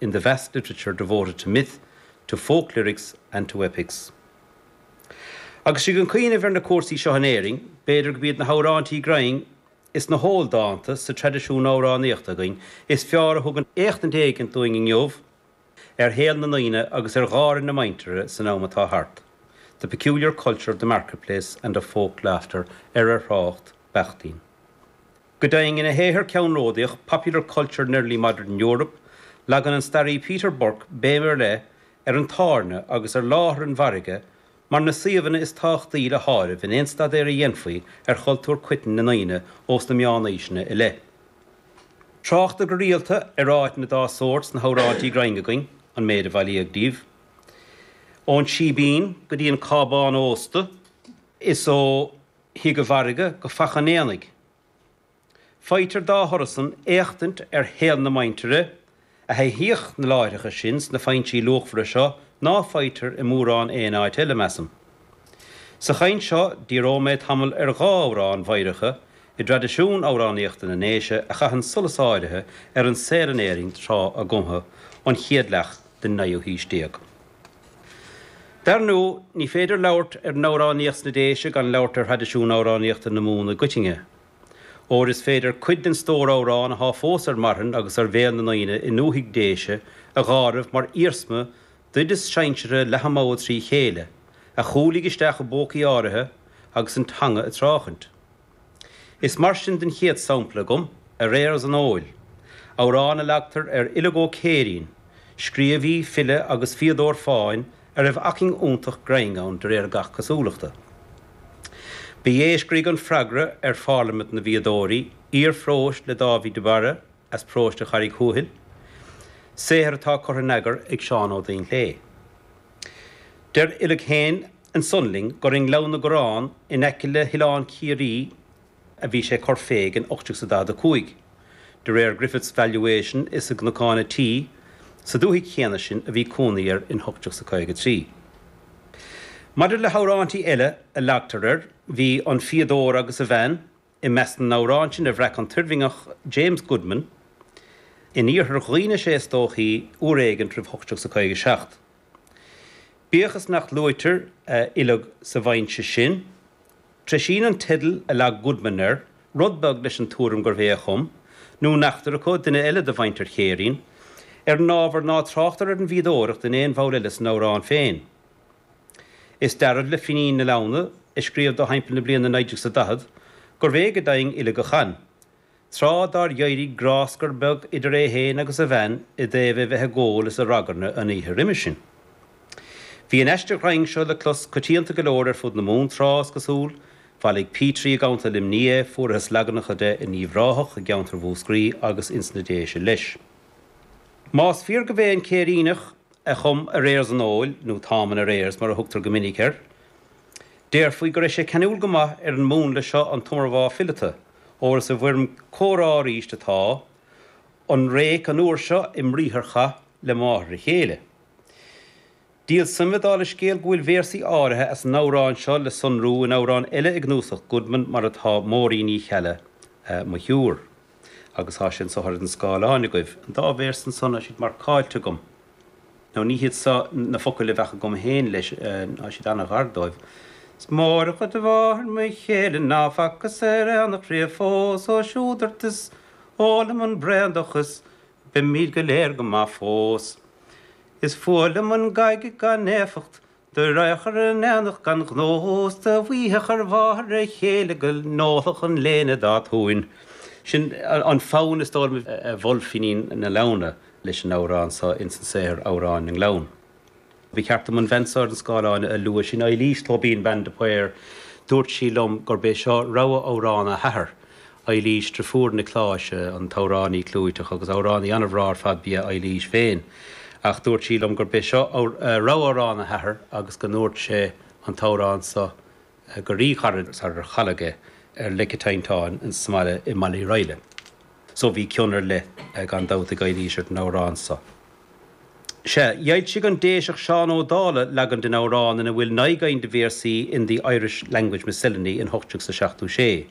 in the vast literature devoted to myth, to folk lyrics and to epics'. Agus sinn ag cuimhneamh ar na cúrsaí seo in Éirinn, b'fhéidir go b'iad na hamhráintí grinn is na hól-dánta sa traidisiún amhránaíochta againn is fearr a thugann éachtaint éigint dúinn inniu ar shaol na ndaoine agus ar gháire na muintire san am atá thart, 'the peculiar culture of the market-place and of folk laughter' ar ar thrácht Bakhtin. Go deimhin, ina shaothar ceannródaíoch Popular Culture in Early Modern Europe, leagann an staraí Peter Burke béim ar leith ar an tábhairne agus ar láthair an mhargaidh mar na suíomhanna is tábhachtaí le háireamh in aon staidéar a dhéanfaí ar chultúr coiteann na ndaoine ós na meánaoiseanna i leith. Tráchtar go rialta ar áiteanna dá sórt sna hamhráintí grinn againn, an méid a bhailíodh díobh ón síbín go dtí an cábán ósta, is ó thigh an mhargaidh go faiche an aonaigh. Faightear dá thoradh san éachtaint ar shaol na muintire a thaithíodh na láithreacha sin sna foinsí luachmhara seo ná faightear i mórán aon áit eile, measaim. Sa chaint seo, díreoidh mé tamall ar dhá amhrán mheidhreacha i dtraidisiún amhránaíochta na nDéise a chaitheann solas áirithe ar an saol in Éirinn tráth a gcumtha, an chéad leath den naoú haois déag. Dar ndóigh, ní féidir labhairt ar amhránaíocht sna Déise gan labhairt ar thraidisiún amhránaíochta na Mumhan i gcoitinne, óir is féidir cuid den stór amhrán atá fós ar marthain agus ar bhéal na ndaoine i ndúthaigh Déise a dh'áireamh mar iarsma d'oideas sinseartha Leithe Mogha trí chéile, a chúlaigh isteach i bpócaí áirithe agus an teanga ag tráchaint. Is mar sin den chéad sampla agam, aréir as an fheoil, amhrán a leagtar ar Uileag Ó Céirín, scríobhaí, file agus fíodóir fáin a raibh acmhainn iontach grinn ann de réir gach cosúlachta. Ba é a scrígh an freagra ar Pharlaimint na bhFíodóirí, aoir phróis le Dáibhí de Barra as Próiste Charraig Thuathail, saothar atá curtha in eagar ag Seán Ó Duinnshléibhe. Deir Uileag féin, Ansan linn gur i nGleann na gCorrán in aice le hOileán Ciarraí a bhí sé ag cur fé in 1845. De réir Griffith's Valuation is i gCnocán a' Tí, sa dúthaigh chéanna sin, a bhí cónaí air in 1853. Maidir le hamhráintí eile a leagtar air, bhí An Fíodóir agus a Bhean, I measc na n-amhrán sin a bhreac an tOirmhinneach James Goodman, in iarthar Dhuibhne is é is dóichí, uair éigint roimh 1857. Bíodh is nach luaitear Uileag sa bhfoinse sin, treisíonn an teideal a leag Goodman air rud beag leis an tuairim gurbh é a chum, nó neachtar acu, duine eile de mhuintir Chéirín, ar an ábhar ná tráchtar ar an bhfíodóireacht in aon bhall eile san amhrán féin. Is dearbh le Finín na Leamhna, ag scríobh dó thimpeall na bliana 1940, gurbh é go deimhin Uileag a chan, tráth dár d'éirigh gráscar beag idir é féin agus a bhean i dtaobh é bheith ag ól is ag ragairne an oíche roimis sin. Bhí an aiste ghrinn seo le clos coitianta go leor ar fud na Mumhan tráth, is cosúil, bhailigh Petrie i gContae Luimnigh é, fuarathas leaganacha de in Uíbh Ráthach, i gceantar Mhúscraí agus ins na Déise leis. Más fíor gurbh é an Céiríneach a chum Arrears an Óil, nó Táim in Arrears mar a thugtar go minic air. Déarfaí go raibh sé ceanúil go maith ar an múnla seo an t-iomarbhá fileata, óir is i bhfoirm comhrá arís atá an réic an uair seo i mbriatharchath le máthair a chéile. Díol suime dála an scéil go bhfuil véarsaí áirithe as an amhrán seo le sonrú in amhrán eile i gcnuasach Goodman mar atá Máirín Ní Cheallaigh, Mo Shiúr. Agus tá sé anseo ar an scáileán agaibh. An dá véarsa ansan, tá siad marcáilte agam. Nó ní hiad seo na focail a bheadh agam féin leis, tá siad an-ghar dóibh. Is mór an chuid de mháthair mo chéile ná facthas ar aonach riamh fós ó siúd ort is ól liom an braon de is beimid go léir go maith fós. Is fuath liom an gaige gan éifeacht Do rachadh ar an aonach gan ghnó is do mhaífeadh ar mháthair a chéile go n-ólfadh an léine dá tóin. Sin an fonn is dóigh liom a mhol Finín na Leamhna leis an amhrán so ins an saothar Amhráin na nGleann. Ba cheart dom an bhean so ar an scáileán a lua, sin Eilís Tóibín, bean de Paor. Dúirt sí liom gurb é seo rogha amhrán a hathar Eilís deirfiúr Niocláis, an t-amhránaí clúiteach agus amhránaí an-bhreá ar fad ba ea Eilís féin, ach dúirt sí liom gurb é seo rogha amhrán a hathar agus go ndúirt sé an t-amhrán so go ríghairid sarar cailleadh é ar lic an teinnteáin in san mbaile i mBaile Uí Raghalla. So bhí cion ar leith gan dabht ag Eilís ar an amhrán so. Sea, dh'fhoilsigh an Déiseach Seán Ó Dálaigh leagan den amhrán ina bhfuil naoi gcinn de véarsaí in The Irish Language Miscellany in 1876.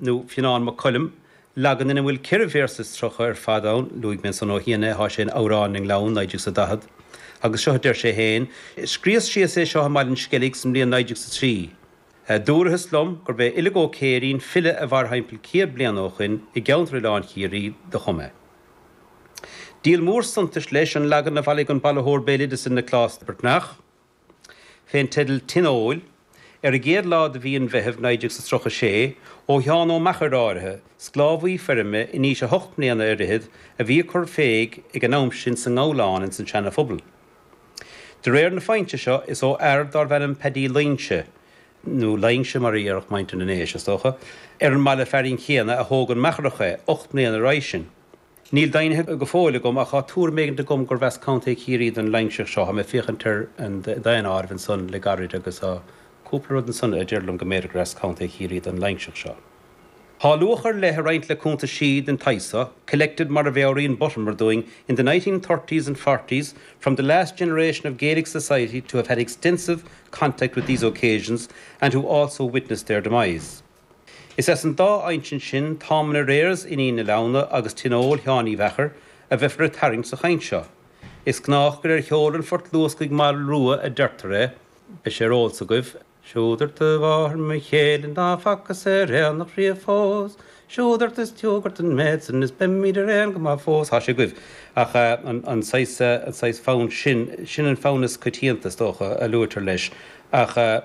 nó Fionán Mac Coluim, leagan ina bhfuil ceithre véarsa is tríocha ar fad ann, luaigh mé ansan ó chianaibh, thá sé in Amhráin na nGleann, 1940, agus seo a deir sé féin, 'Scríos síos é seo i mBaile an Sceilg san mbliain 1903. Dúrathas liom gurb é Uileag Ó Céirín, file a mhair thimpeall céad bliana ó shoin, i gceanntar Oileán Chiarraí, do chum é. Díol mór suntais, leis, an leagan a bhailigh an bailitheoir béaloideasa Nioclás Breatnach, fén dteideal Tigh an Óil, ar an gcéad lá de mhí an Mheithimh 1936, ó Sheán Ó Meachair áirithe, sclábhaí feirme in aois a hocht mbliana ar fhichead, a bhí ag cur féig ag an am sin sa nGabhlán ins an tSeana Phobal. De réir na foinse seo, is ó fhear dárbh ainm Peaidí Loingse, nó Laingse mar a dhéarfadh muintir na nDéise, is dócha, ar an mbaile fearainn céanna a thóg an Meacharach é, ocht mbliana roimhe sin. Níl deimhnithe go fóill agam, ach tá tuairim éigin agam gurb as Contae Chiarraí don Loingseach seo. Tá mé ag féachaint ar an daonáireamh ansan le gairid agus tá cúpla rud ansan a deir liom go mb'fhéidir gur as Contae Chiarraí don Loingseach seo. Tá luach ar leith ag roinnt le cuntaisí den tsaghas seo, collected mar a mheabhraíonn Buttimer dúinn in the nineteen thirties and forties from the last generation of Gaelic society to have had extensive contact with these occasions and who also witnessed their demise. Is as an dá insint sin, Táim in Arrears Fhinín na Leamhna agus Tionól Sheáin Uí Mheachair, a bheifear ag tarraingt sa chaint seo. Is gnách gur ar sheol an Phort Luascaigh Moll Rua a deirtear é, beidh sé ar eolas agaibh, Siúd ort a mháthair mo chéile ná facas ar aonach riamh fós, Siúd ort is tiúg ort an méid san is beimid araon go maith fós, tá sé agaibh. Ach an saghas fonn sin, sin an fonn is coitianta, is dócha, a luaitear leis. Ach.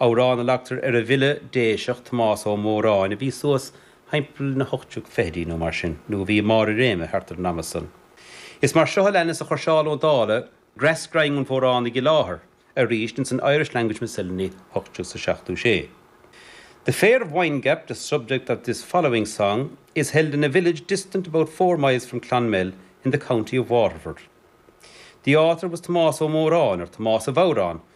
Amhrán a leagtar ar an bhfile Déiseach Tomás Ó Móráin a bhí suas thimpeall na hocht déag fichidí nó mar sin, nó a bhí i mbarr a réime thart ar an ama san. Is mar seo a leanas a chuir Seán Ó Dálaigh greas grinn an Mhóránaigh i láthair arís ins an Irish Language Miscellany, ocht déag is a seachtó sé. The fair of Windgap, the subject of this following song, is held in a village distant about four miles from Clonmel in the county of Waterford. The author was Tomás Ó Móráin, or Tomás a' Bhodhráin,